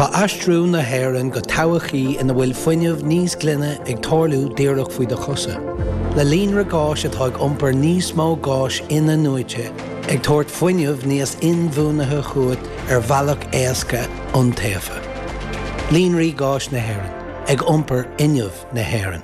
Tá aistriú na hÉireann go todhchaí ina bhfuil fuinneamh níos glaine ag tarlú díreach faoi do chosa. Le líonra gáis atá ag iompar níos mó gáis in-athnuaite, ag tabhairt fuinneamh níos inbhuanaithe chugat ar bhealach éasca, iontaofa. Líonraí Gáis na hÉireann, ag iompar fhuinneamh na hÉireann.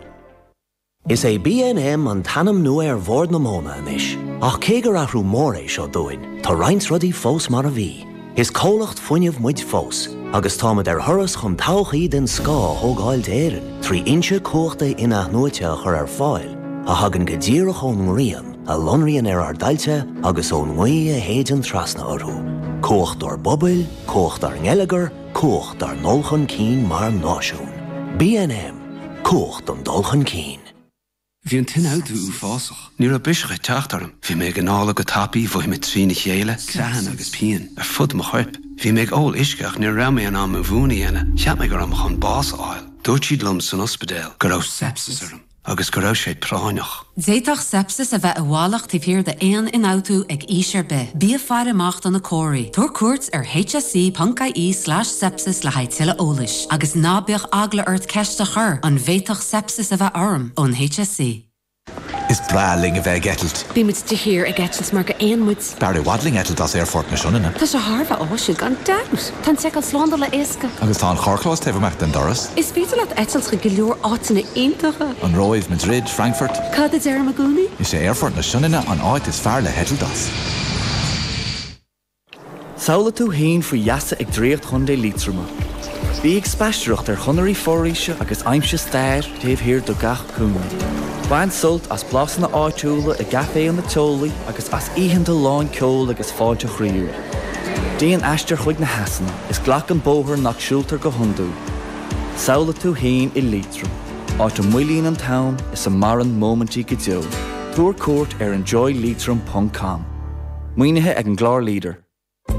Is é BNM an t-ainm nua ar Bhord na Móna anois, ach cé gur athrú mór é seo dúinn, tá roinnt rudaí fós mar a bhí. Is comhlacht fuinnimh muid fós, agus táimid ar thuras chun todhchaí den scoth a thógáil d'Éirinn trí fhoinse cumhachta in-athnuaite a chur ar fáil a thagann go díreach ón ngrian, a lonraíonn ar ár dtailte agus ón ngaoth a shéideann trasna orthu. Ag cumhachtú ár bpobail, ag cumhachtú ár ngeilleagar, Ag cumhachtú ár ndul chun cinn mar náisiún. BNM, Ag cumhachtú an dul chun cinn. Bhí an t-ionfhabhtú uafásach. Ní raibh biseach ag teacht orm. Bhí mé ag análú go tapaidh, mhothaigh mé trína chéile, creathanna agus pian ar fud mo choirp. Bhí mé ag ól uisce ach ní raibh mé in ann mo mhún a dhéanamh. Cheap mé go raibh mé chun bás a fháil. Dúirt siad liom san ospidéal go raibh sepsis orm. agus go raibh sé práinneach. D'fhéadfadh sepsis a bheith i bhfalach taobh thiar d'aon ionfhabhtú ag aois ar bith. Bí ag faire amach do na comharthaí. Tabhair cuairt ar hse.ie slais sepsis le haghaidh tuilleadh eolais. Agus ná bíodh eagla ort ceist a chur, An bhféadfadh sepsis a bheith orm? ón hse. Is breá linn a bheith ag eitilt. Bímid de shíor ag eitilt mar gur éin muid. B'fhearr i bhfad linn eitilt as Aerfort na Sionainne. Tá sé thar a bheith áisiúil gan dabht! Tá an seiceáil slándála éasca. Agus tá an carrchlós taobh amuigh den doras. Is féidir leat eitilt chuig go leor áiteanna iontacha. An Róimh, Madrid, Frankfurt. Cad a deirim i gcónaí? Is é Aerfort na Sionainne an áit is fearr le heitilt as. Samhlaigh tú fhéin faoi gheasa ag Draíocht Chontae Liatroma. Bí ag spaisteoireacht ar chonairí foraoise agus aimsigh stair taobh thiar de gach Cúinne. Bain sult as blasanna áitiúla i gcaiféanna teolaí agus as oícheanta lán ceoil agus fáilte chroíúil. Déan aistear chuig na heasanna is glac an bóthar nach siúltar go hiondúil. Samhlaigh tú féin i Liatroim, áit a moillíonn an t-am is a maireann móimintí go deo. Tabhair cuairt ar enjoyleitrim ponc com. Maoinithe ag an gclár Leader.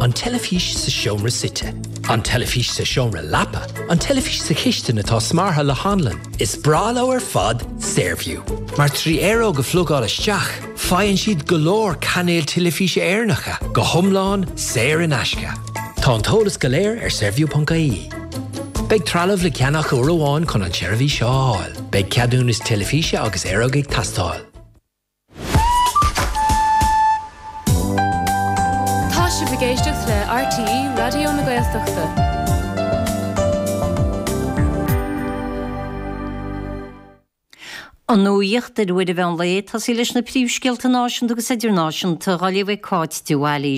An teilifís sa seomra suite. An teilifís sa seomra leapa. An teilifís sa chistin atá smeartha le hanlann. Is breá leo ar fad Saorview, mar trí aeróg a phlugáil isteach, faigheann siad go leor cainéal teilifíse Éireannacha, go hiomlán saor in aisce. Tá an t-eolas go léir ar Saorview.ie. Beidh trealamh le ceannach uair amháin chun an tseirbhís seo a fháil. Beidh ceadúnas teilifíse agus aeróg ag teastáil. Tá sibh ag éisteacht le RTÉ Raidió na Gaeltachta. An nuacht ar uair an mheán lae, ag tosaí leis na príomhscéalta náisiúnta agus idirnáisiúnta, dhá léamh ag Cáit de Bhailís.